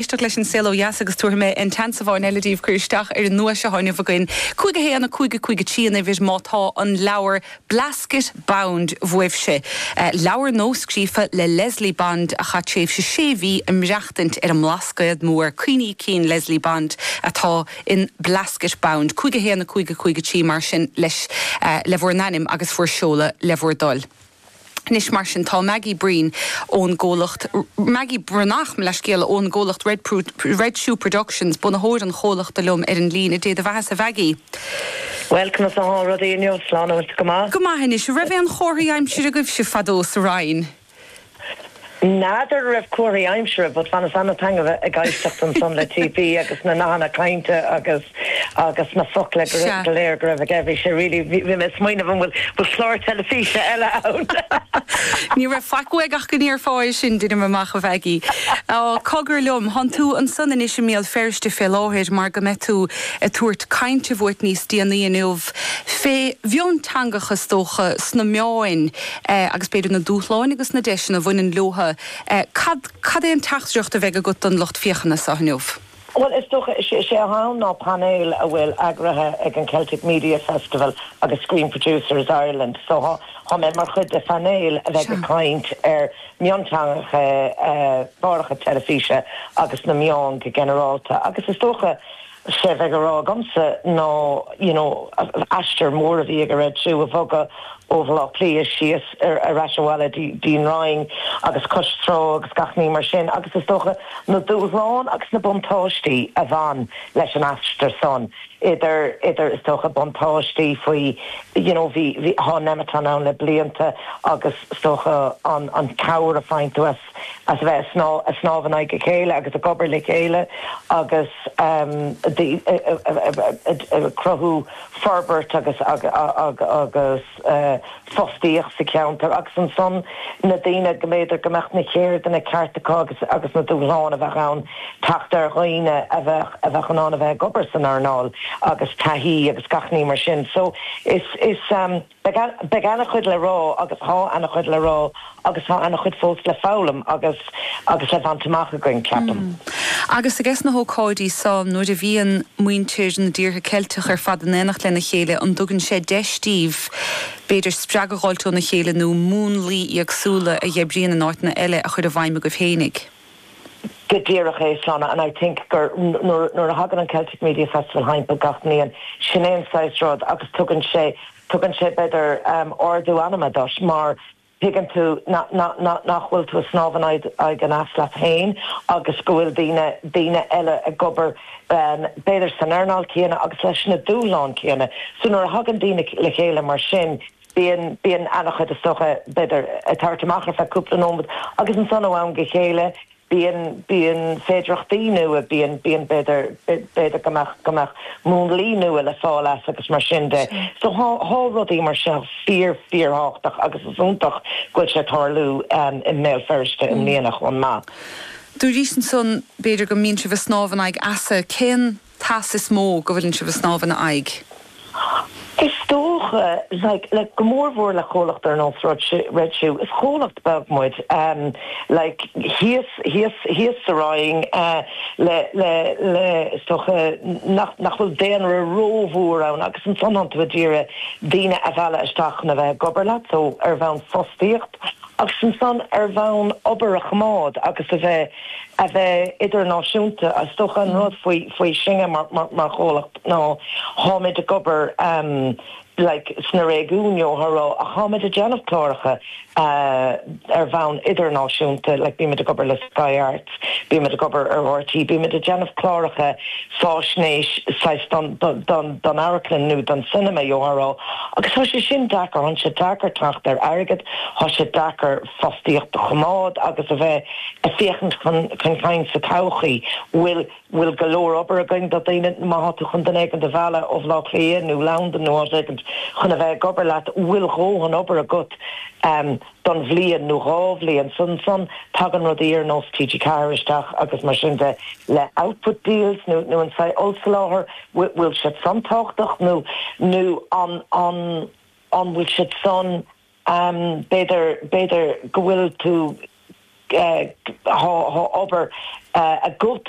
éisteacht leis An Saol Ó Dheas agus tabharfaidh mé an t-aon seans amháin eile daoibh cur isteach ar an nduais atá inniu againn. Cúig a haon, a cúig, a cúig a trí an uimhir má tá an leabhar Blasket Bound uaibhse. Leabhar nuascríofa le Leslie Bond a chaith tréimhse sé mhí i maireachtaint ar an mBlascaod Mór. Cuimhní cinn Leslie Bond atá in Blasket Bound. Cúig a haon, a cúig, a cúig a trí mar sin leis, le bhur n-ainm agus bhur seoladh le bhur dtoil. Anois mar sin tá Maggie Breen ón gcomhlacht Maggie Breathnach mo leithscéal ón gcomhlacht Red Pro Red Shoe Productions, bunaitheoir an chomhlachta liom ar an líne. A Dé do bheathasa, a Mhaggie. Bhuel, conas atánn rudaí inniu? An bhfuil tú go maith? Go maith anois. Raibh aon chomharthaí aimsire agaibhse fadó sa Rinn? N'fheadar an raibh comharthaí aimsire but bhíos an-taitneamhach ag éisteacht ansan le TP agus na nathanna cainte agus agus na focla go Sea. go léir go raibh aige. Bhí sé really bhí bhí mé ag smaoineamh an bhfuil bhfuil clár teilifíse eile ann? Ní raibh faic uaim ach go ndéarfá é sin, deinim amach, a Mhaggie. Á, cogar liom, thán tú ansan anois i mBéal Feirste fé láthair mar go mbeidh tú ag tabhairt cainte uait níos déanaí inniu fé mhionteangachas is dócha sna meáin, agus b'fhéidir na dúshláin agus na deiseanna a bhaineann leotha, cad, cad é an teachtaireacht a bheidh agat don lucht féachana seo inniu? Bhuel, is dócha, is é atá ann ná painéal a bhfuil eagraithe ag an Celtic Media Festival agus Screen Producers Ireland, so tá, tá mé mar chuid de phainéal a bheidh ag caint ar mhionteangacha i gcláracha teilifíse agus sna meáin go ginearálta agus is dócha, Is é bheidh a rá agamsa ná you know aistear mór a bhí ag Red Shoe ag bogadh ó Bhaile Átha Cliath síos ar ais abhaile dtí an Rinn agus cois trá agus gach ní mar sin agus is dócha na dúshláin agus na buntáistí a bhain leis an aistear san idir idir is dócha buntáistí faoi you know bhí bhí thá Nemeton ann le blianta agus is dócha an an cabhair a faigheann tú as as a bheith ag snámh in aghaidh a chéile agus ag obair le chéile agus ag cruthú forbairt agus fostaíocht sa cheantar agus ansan na daoine go mb'fhéidir go mbeadh na ceirdeanna ceart acu agus na dúshláin a bheadh ann teacht ar dhaoine a bheadh in ann a bheith ag obair san earnáil agus taithí agus gach ní mar sin so is. Beidh an-chuid le rá agus tá an-chuid le rá agus tá an-chuid fós le foghlaim agus agus le baint amach againn, ceapaim. Agus i gcás na hócáide seo, nuair a bhíonn muintir na dtíortha Ceilteach ar fad in éineacht lena chéile, an dtugann sé deis daoibh b'fhéidir spreagadh a dh'fháilt óna chéile nó múnlaí éagsúla a dh'oibríonn in áiteanna eile a chur i bhfeidhm agaibh féinig? Go díreach é, Seán, and I think gur nuair, nuair a thagann an Celtic Media Festival timpeall gach mbliain, sin é an saghas rud agus tugann sé, tugann sé b'fhéidir ardú anama duit mar tuigeann tú nach, nach, nach, nach bhfuil tú a' snámh in aghaidh, aghaidh an eas leat féin agus go bhfuil daoine, daoine eile ag obair b'fhéidir san earnáil chéanna agus leis na dúshláin chéanna. So nuair a thagann daoine le chéile mar sin, Bíonn, bíonn an-chuid is dócha b'fhéidir ag tabhairt amach ar feadh cúpla nóiméad agus ansan ó am go chéile bíonn, bíonn féidireachtaí nua, bíonn, bíonn b'fhéidir, b'fhéidir go mbeadh, go mbeadh múnlaí nua le fáil as agus mar sin de. Sure. So thá rudaí mar seo fíor, fíor thábhachtach agus is iontach go bhfuil sé ag tarlú i mBéal Feirste i mbliana chomh maith. Dúraís-se ansan b'fhéidir go mbíonn sibh ag snámh in aghaidh easa. Cén. t-eas is mó go bhfuileann sibh ag snámh ina aghaidh. Is dócha, like, le go mór mhór le comhlacht ar nós Red Shoe, is comhlacht beag muid, um, like, thíos, thíos, thíos sa Rinn, eh, le, le, le, is dócha nach, nach bhfuil daonra rómhór ann agus ansan tánn tú ag iarraidh daoine a mhealladh isteach chun a bheith ag obair leat, so ar bhonn fostaíocht. agus ansan ar bhonn obair a choimeád agus a bheith a bheith idirnáisiúnta. Is dócha an rud faoi faoi sinne mar mar mar chomhlacht ná táimid ag obair ehm like sna réigiúin you know ach táimid ag déanamh cláracha eh ar bhonn idirnáisiúnta like bímid ag obair le Sky Arts Bímid ag obair le RTÉ, bímid ag déanamh cláracha fáisnéis saghas don amharclann nó don cinema, you know, agus thá sé sin deacair, thá sé deacair teacht ar airgead, thá sé deacair fostaíocht a choimeád agus a bheith ag féachaint chun cinn sa todhchaí. Bhfuil, bhfuil go leor obair againn do dhaoine, má thá tú chun duine éigin a mhealladh ó Bhleá Cliath nó Londain nó áit éigint chun a bheith ag obair leat, bhfuil do dhóthain obair agat? don bhliain nó dhá bhliain san san tagann rudaí ar nós TG4 isteach agus mar sin de le output deals nó nó an saghas ollsoláthar bhfuil siad san tábhachtach nó nó an an an bhfuil siad san ehm b'fhéidir b'fhéidir go bhfuil tú eh dhá dhá obair eh agat